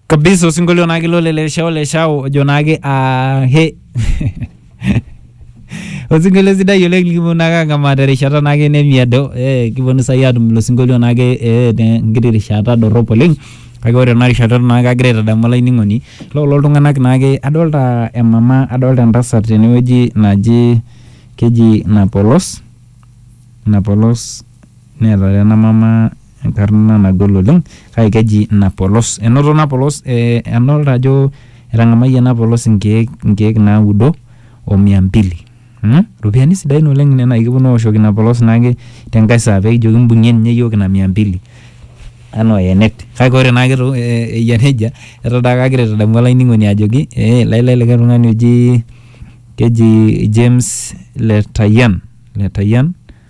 kabisa osinkolio naake ilo le leshao leshao ojo naake ah, he osinkolio sidai oleng likiponu naake ang'amaa terishata naake nemiedo eh, kiponu sai atum ilo sinkolio naake eh, tenkiti rishata dorrop oleng kake ore ena rishata eton naake agira aitadamu olainining'oni loo kulo tung'anak naake adolta emama adolta entasat tenewueji naji keji napolos napolos Neeta ena mama enkarna nagol oleng kake keji napolos. Enoto napolos adolita ajo etang'amayie napolos inkeek naudo o mia mbili. Iropiyiani sidain oleng nena kipwonu aoshoki napolos naake tenkae saa pee kijoki imbung'ie ninye iyiook ina mia mbili enaa oyenet. Kake ore naake eyia neija eton taake agira aitadamu olainining'oni ajoki lai lai likae tung'ani oji keji James Letayian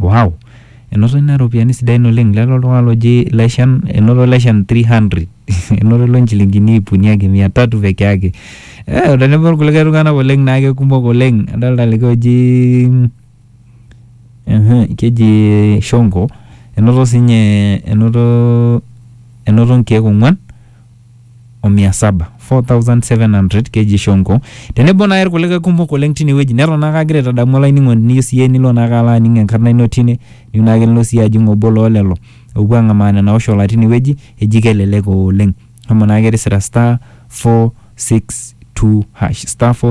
Wow! Enoto ina ropiyiani sidain oleng. Lelo oltung'ani loji Leshan, enoto Leshan 300. Enoto ilo nchilingini iip uni ake, mia tatu peke yake. Eh, tenebo irkulikae tung'anak oleng naa kekumok oleng. Adolta likae oji ehe, keji Shonko, enoto sinye enoto enoto nkeek ong'wan o mia saba 4700 keji Shonko tenebo naake irkulikae kumok oleng tine wueji neton naake agira aitadamu olainining'oni niyieu siyie nilo naake alo aning enkarna ino tine niyieu naake nilo siyie ajing obo loo lelo oopuo ang'amaa nena oshola tine wueji eji kelelek oleng shomo naake tisira star 462 hash star 4